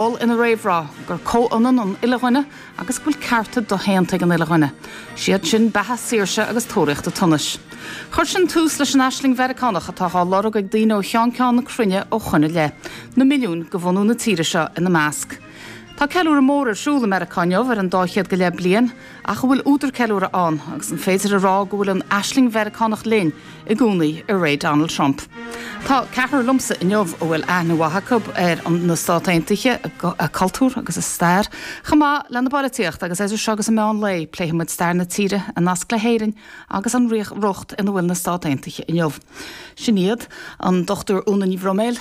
mhol ina réamhrá gur comhionann an uile dhuine agus go bhfuil cearta doshéanta ag an uile dhuine, is iad sin beatha, saoirse agus tóraíocht an tsonais. Chuir sin tús leis an aisling Mheiriceánach atá á lorg ag daoine ó cheann ceann na cruinne ó shoin i leith, na milliúin de bhunadh na tíre seo ina measc. Tá ceiliúradh mór ar siúl i Meiriceá inniu ar an dá chéad go leith bliain, ach an bhfuil údar ceiliúrtha ann agus an féidir a rá go bhfuil an aisling Mheiriceánach linn i gcónaí i ré Donald Trump? Tá ceathrar liomsa inniu a bhfuil aithne mhaith acu ar na Stáit Aontaithe, a cultúr agus a stair, chomh maith lena bpolaitíocht agus idir seo agus an meán lae pléifidh muid stair na tíre, a nasc le hÉirinn agus an riocht ina bhfuil na Stáit Aontaithe inniu. Sin iad, An Dr Úna Ní Bhroiméil,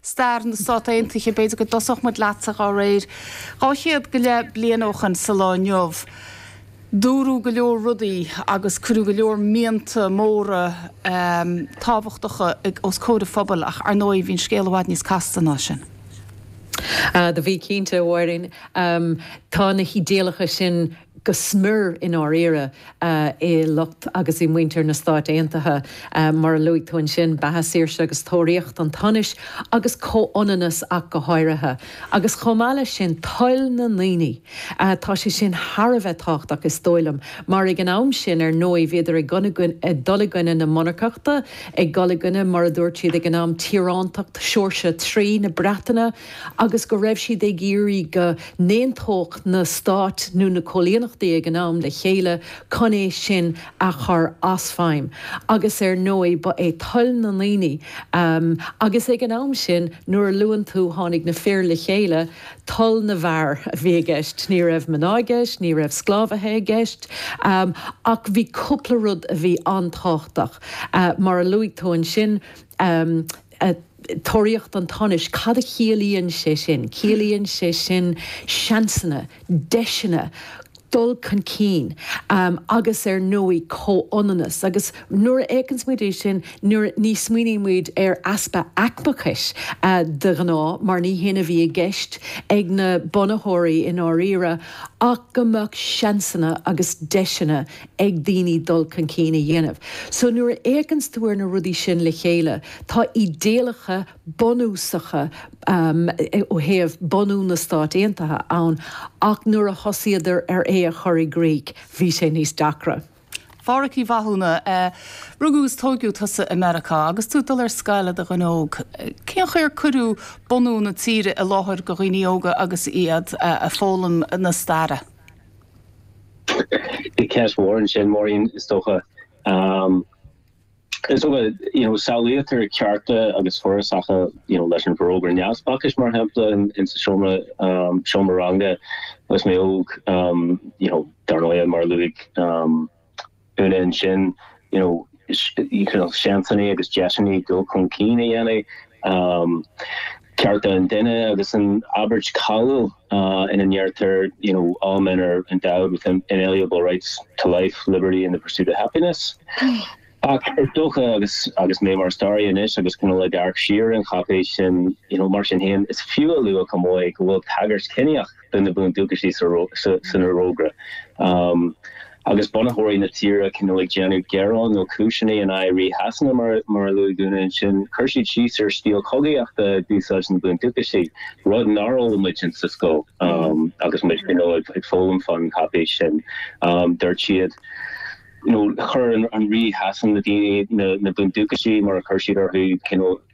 stair na Stát Aontaithe, b'fhéidir go dtosódh muid leatsa dá réir. Dhá chéad go leith bliain ó shin sa lá inniu, dúradh go leor rudaí agus cuireadh go leor mianta móra tábhachtacha os comhair an phobail ach, ar ndóigh, bhí an scéal i bhfad níos casta ná sin. Do bhí, cinnte, Mháirín. Tá na hídéalacha sin go smior, i ndáiríre, i lucht agus i muintir na Stáit Aontaithe. Mar a luaigh tú ansin, beatha, saoirse agus tóraíocht an tsonais, agus comhionannas ach go háirithe, agus chomh maith leis sin, toil na ndaoine, tá sé sin thar a bheith tábhachtach, is dóigh liom, mar ag an am sin, ar ndóigh, bhíodar ag dul i gcoinne na monarcachta, ag dul i gcoinne, mar a dúirt siad ag an am, tíorántacht Sheoirse a Trí na Breataine. agus go raibh siad ag iarraidh go n-aontódh na stáit nó na coilíneachtaí ag an am le chéile chun é sin a chur as feidhm, agus ar ndóigh ba é toil na ndaoine, agus ag an am sin nuair a luann tú tháinig na fir le chéile, toil na bhfear a bhí i gceist. Ní raibh mná i gceist, ní raibh sclábhaithe i gceist, ach bhí cúpla rud a bhí an-tábhachtach, mar a luaigh tú ansin, a. Tóraíocht an tsonais, cad a chiallaíonn sé sin? Ciallaíonn sé sin seansanna, deiseanna, dul chun cinn agus ar ndóigh comhionannas agus nuair a fhéachanns muid air sin ní smaoiníonn muid ar easpa aicmeachais de ghnáth mar ní hé a bhí i gceist ag na bunaitheoirí i ndáiríre ach go mbeadh seansanna agus deiseanna ag daoine dul chun cinn a dhéanamh. So nuair a fhéachanns tú ar na rudaí sin le chéile, tá idéalacha bunúsacha ó thaobh bunú na Stáit Aontaithe ann ach nuair a thosaíodar ar é a chur i gcrích, bhí sé níos deacra. A Phádraic Uí Mhathúna, rugadh is tógadh tusa i Meiriceá. Agus tú ag dul ar scoil i do dhuine óg, cén chaoi ar cuireadh bunú na tíre i láthair do dhaoine óga agus iad ag foghlaim na staire? Bhí ceist mhór ansin, Máirín, is dócha. Is dócha, you know, samhlaítear cearta agus fuarasacha, you know, leis an bhforógra Neamhspleáchais, mar shampla, in sa seomra, seomra ranga, agus mé óg, you know, dar ndóigh, mar a luaigh, Úna ansin, you know, seansannaí agus deiseanna dul chun cinn a dhéanamh, um, cearta an duine agus an abairt cáiliúil ina ndeirtear, you know, all men are endowed with inalienable rights to life, liberty and the pursuit of happiness. Ach is dócha, agus agus mé mar staraí anois agus cineál ag amharc siar ar an cháipéis sin, you know, mar sin féin, is fiú a lua chomh maith go bhfuil tagairt ciníoch de na bundúchasaigh san Fhorógra, agus bunaitheoirí na tíre cineál ag déanamh gearán nó cúiseanna in aghaidh Rí Shasana, mar a luaigh Úna ansin, chuir siad síos ar stíl chogaíochta a d'úsáid na bundúchasaigh, rud nár fhoghlaim muidne sa scoil agus muid ag foghlaim fán chaipéis sin. Dúirt siad, nó chuir an Rí Shasana, na daoine, na bundúchasaigh, mar a chuir siad orthu,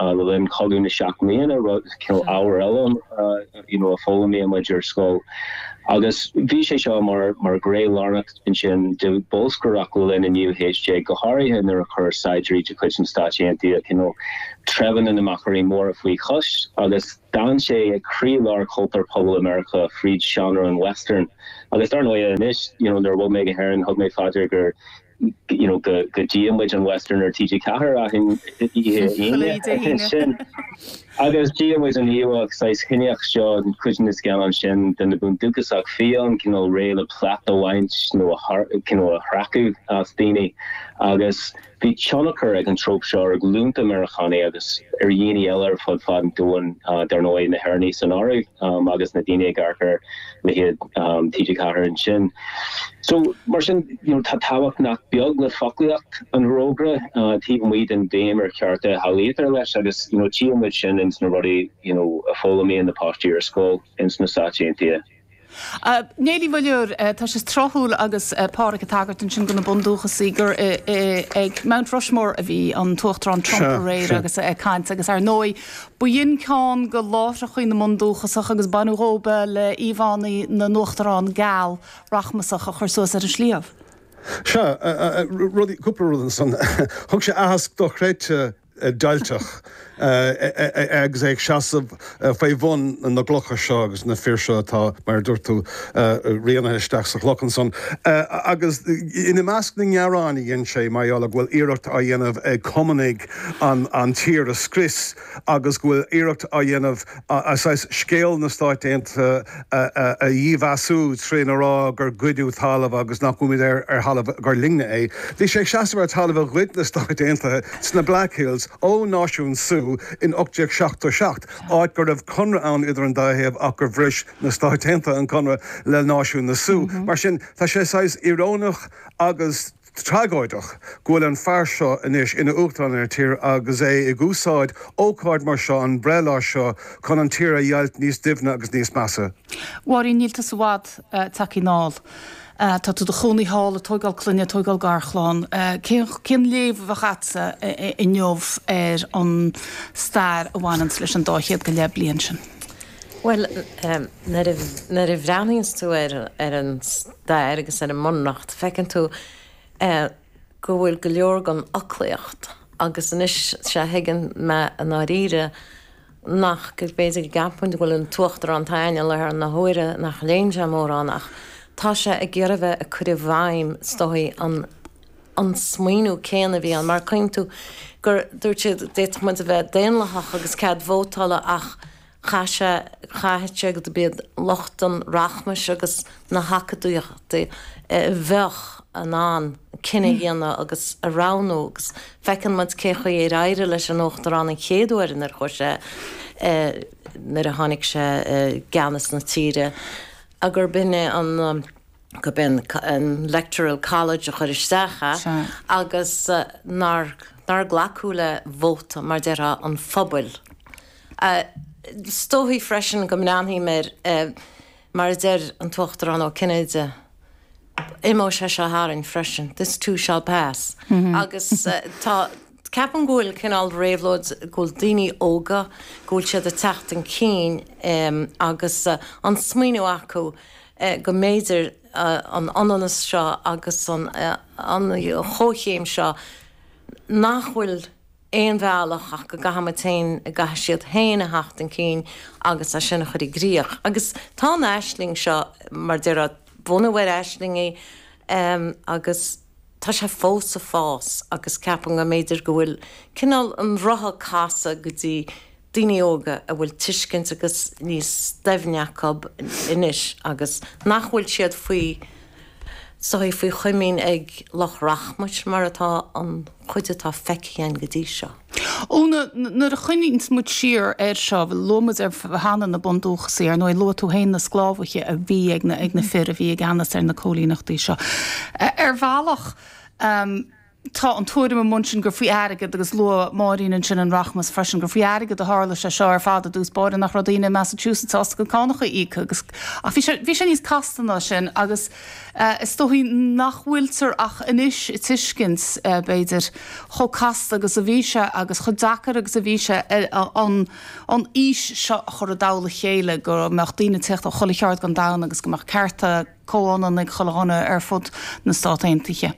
Le linn Chogadh na Seacht mBliana, rud, cineál, ábhar eile, you know, a fhoghlaimíonn muid ar scoil agus bhí sé seo mar, mar ghné lárnach ansin de bholscaireacht le linn an naoú haois déag, go háirithe nuair a chuir saighdiúirí de chuid na Stáit Aontaithe, you know, treibheanna na Machairí Móra faoi chois agus d'fhan sé ag croí-lár chultúr pobail i Meiriceá fríd seánra an Western. Agus dar ndóighe anois, you know, nuair a bhog mé go hÉirinn, thug mé faoi deara gur. you know, go, go dtchíonn muid an Western ar TG4 achan oíche Aoine, Aoine. sin, agus tchíonn muid an íomhá saghas chiníoch seo, fríd na scannáin sin de na Bundúchasach, fiáin, cineál réidh le plait a bhaint nó a thar, you know, a sracadh as daoine. Agus bhí tionchar ag an tróp seo ar ghlúnta Meiriceánaigh agus ar dhaoine eile ar fud fad an domhain, dar ndóigh na hÉireannaigh san áireamh, um, agus na daoine ag amharc ar leithéid TG4 ansin. So, mar sin, you know, tá tábhacht nach beag le foclaíocht an Fhorógra taobh amuigh den bhéim ar chearta a shamhlaítear leis agus, you know, tchíonn muid sin ins na rudaí, you know, a fhoghlaimíonn na páistí ar scoil ins na Stáit Aontaithe. Niall Uí Mhuilleoir, Tá sé tráthúil agus Pádhraic ag tagairt ansin do na bundúchasaigh gur ag Mount Rushmore a bhí an tUachtarán Trump aréir agus é ag caint agus, ar ndóigh, B'shin ceann de láithreacha na mBundúchasach agus baineadh díofa le íomhánna na n-uachtarán geal rachmasach a chur suas ar an sliabh. Sea, bhuel, cúpla rud ansan. Thug sé aitheasc dochreidte deighilteach agus é ag seasamh faoi bhun na gclocha seo agus na fir seo atá, mar a dúirt tú, rianaithe isteach sa chloch ansan. Agus ina measc na ngearán a dhein sé mar gheall go bhfuil iarracht á dhéanamh ag Cumannaigh an tír a scrios agus go bhfuil iarracht á dhéanamh scéal na Stáit Aontaithe a dhímheasú trína rá gur goideadh talamh agus nach bhfuilimid ar thalamh gur linne é. Bhí sé ag seasamh ar thalamh a ghoid na Stáit Aontaithe sna Black Hills ó Náisiún Sioux in 1877, áit go raibh conradh ann idir an dá thaobh ach gur bhris na Stáit Aontaithe an conradh le Náisiún na Sioux. Mar sin, tá sé saghas íoróineach agus. tragóideach go bhfuil an fear seo anois ina Uachtarán ar an tír agus é ag úsáid ócáid mar seo, an breithlá seo, chun an tír a dheighilt níos doimhne agus níos measa. A Mháirín, níl tusa i bhfad tagthaí anall. Tá tú i do chónaí thall, ag tóigeáil clainne, ag tóigeáil garchlann. Cén, cén léamh a bheadh agatsa inniu ar an stair a bhaineanns leis an dá chéad go leith bliain sin? Bhuel, nuair a, nuair a bhreathnaíonns tú ar, ar an. stair agus ar an mbunreacht, feiceann tú go bhfuil go leor den fhoclaíocht, agus anois 'sea a thuigeann mé i ndáiríre nach, b'fhéidir go gceapfainn go bhfuil an tUachtarán atá againn i láthair na huaire nach léann sé mórán ach tá sé ag iarraidh bheith ag cur i bhfeidhm is dóigh an smaoineamh céanna a bhí ann mar cuimhníonn tú gur dúirt siad d'fhéadfadh muid a bheith daonlathach agus cead vótála ach Chaith sé, chaithfeadh sé go mb'iad lucht an rachmais agus na hacadúiochta a bheadh in ann cinneadh a dhéanamh agus a roghnú agus feiceann muid cé chaoi ar éirigh leis an Uachtarán an chéad uair nuair chuaigh sé, nuair a tháinig sé i gceannas na tíre gur b'in é an, gur b'in an electoral college a chuir isteach é agus nár, nár glacadh le vóta, mar déarfá, an phobail. Is dóigh freisin go mbreathnaím air, mar a deir an tUachtarán Ó Cinnéide, imeoidh sé seo tharainn freisin, this too shall pass, agus tá, ceapaim go bhfuil cineál réabhlóid, go bhfuil daoine óga, go bhfuil siad ag teacht chun cinn agus an smaoineamh acu go mb'fhéidir an ionannas seo agus an chomhchéim seo nach bhfuil, aon bhealach ach go gcaithfimid féin, go gcaithfidh siad féin a theacht chun cinn agus é sin a chur i gcrích. Agus tá an aisling seo, mar a déarfá, bunaithe ar aisling í agus tá sé fós ag fás agus ceapaim go mb'fhéidir go bhfuil cineál an rotha ag casadh go dtí, daoine óga a bhfuil tuiscint agus níos doimhne acu anois agus nach bhfuil siad faoi chois, faoi chuing ag lucht rachmais muid, mar atá an chuid atá feicthe againn go dtí seo. Úna, nuair a chuimhníonns muid siar air seo, luaigh muid ar cheana na bundúchasaigh, ar ndóigh luaigh tú féin na sclábhaithe a bhí ag na fir a bhí i gceannas ar na coilíneachtaí seo. Ar bhealach. Tá an tuairim i mbunús gur faoi airgead, agus luadh Máirín ansin an rachmas freisin, gur faoi airgead a tharla sé seo ar fad i dtús báire, nach raibh daoine i Massachusetts sásta a gcuid cánacha a íoc agus, ach bhí sé, bhí sé níos casta ná sin agus is dóigh nach bhfuiltear ach anois ag tuiscint, b'fhéidir, chomh casta agus a bhí sé agus chomh deacair agus a bhí sé an, an fhís seo a chur i dtoll a chéile, go mbeadh daoine ag teacht ó chuile cheard don domhan agus go mbeadh cearta comhionann ag chuile dhuine ar fud na Stát Aontaithe.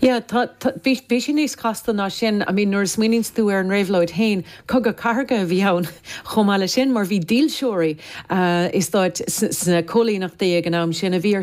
Yeah, tá, tá, bhí, bhí sé níos casta ná sin. I mean, nuair a smaoiníonns tú ar an réabhlóid fhéin, cogadh cathartha a bhí ann chomh maith le sin, mar bhí dílseoirí, eh, i stáit, sna, sna cóilíneachtaí ag an am sin a bhí ar,